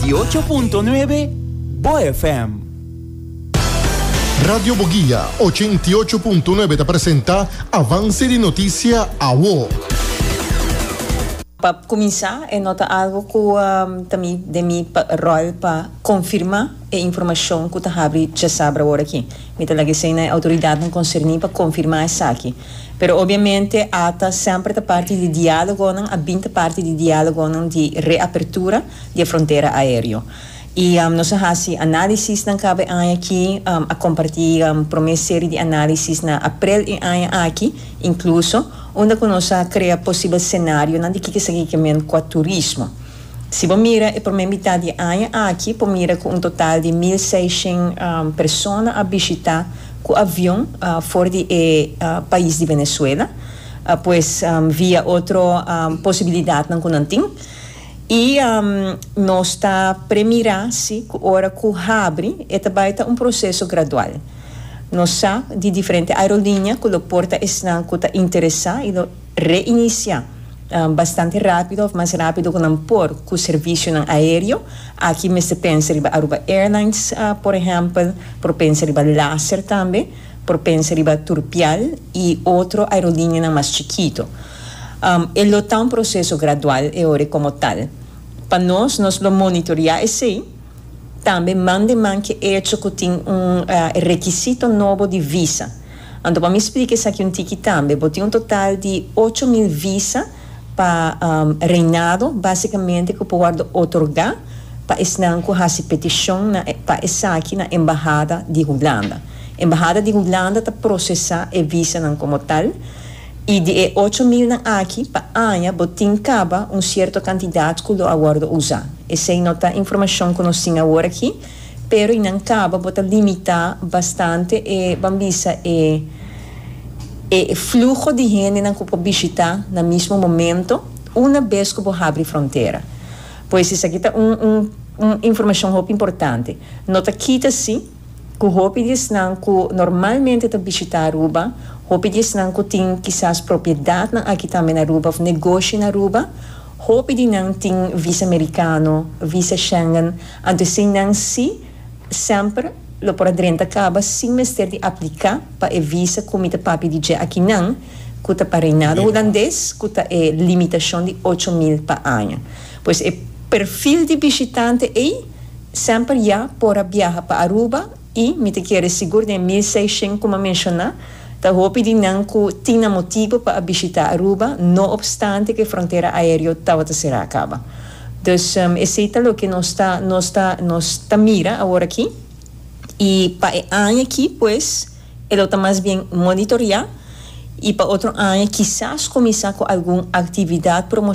Di ocho punto nuebe, Bo FM. Radio Boguia, ochenta i ocho punto nuebe ta presenta Avance di Noticia Awo. Pa cuminsa, e no ta algo cu ta mi den mi rol pa confirma e informacion cu ta habri djasabra awor aki. Mi ta laga esey na e autoridadnan concerni pa confirma esaki. Pero obviamente ata semper ta parti di dialogonan, a bin ta parti di dialogonan di reapertura. di e frontera aereo. I nos a hasi analisisnan kabe aña aki, a komparti prome seri di analisisnan aprel e aña aki, inkluso unda ku nos a krea posibel senarionan di kiko esaki ke men kua turismo. Si bo mira e prome mitat di e aña aki por mira ku un total di mil seishen persona a bishita ku avion for di e pais di Venezuela, pues via otro posibilidatnan ku nan tin. I nos ta premirá si ku ora ku habri e ta bai ta un proseso gradual. Nos sa di diferente aerolinia ku lo porta esnan ku ta interesá i lo reinisiá bastante rápido òf mas rápido ku nan por ku servisionan aéreo. Aki mester pensa riba Aruba Airlines, por ehèmpel, por pensa riba Laser tambe, por pensa riba Turpial. y otro aerolineanan mas chikito. E lo ta un proceso gradual e ora como tal. Pa nos, nos lo monitorea esey, tambe man de man ke echo ku tin un requisito nobo di visa. Anto pa mi splica esaki un tiki tambe, bo tin un total di ocho mil visa pa reinado, basicamente ku por wordo otorga pa esnan ku hasi peticion na pa esaki na embahada di Hulanda. Embahada di Hulanda ta prosesá e visanan komo tal, i di e ocho milnan aki, pa aña bo tin kaba un sierto kantidat ku lo a wòrdu usá. Esei no ta informashon ku nos tin awor aki, pero i nan kaba bo ta limitá bastante e, ban bisa, e e fluho di hendenan ku por bishitá na mismo momento una bes ku bo habri frontera. Pues esaki ta un un un informashon hopi importante. No ta kita si. ku hopi di esnan ku normalmente ta bishitá Aruba, hopi di esnan ku tin kisas propiedatnan aki tambe na Aruba òf negoshi na Aruba. Hopi di nan tin visa merikano, visa Schengen, anto esei nan sí semper lo por a drenta kaba sin mester di apliká pa e visa ku mi ta papia di dje aki nan, ku ta pa Reinado Hulandes, ku ta e limitashon di ocho mil pa aña. Pues e perfil di bishitante ei Semper ya por a biaha pa Aruba y mi ta kere sigur den mil seishen como a menciona ta hopi di nan cu tin nan motibo pa a bishita Aruba no obstante cu e frontera aereo tabata cera caba. Dus esey ta loke nos ta nos ta nos ta mira aworaki y pa e aña aki pues e lo ta mas bien monitorea y pa otro aña kisas cuminsa cu algun actividad promo.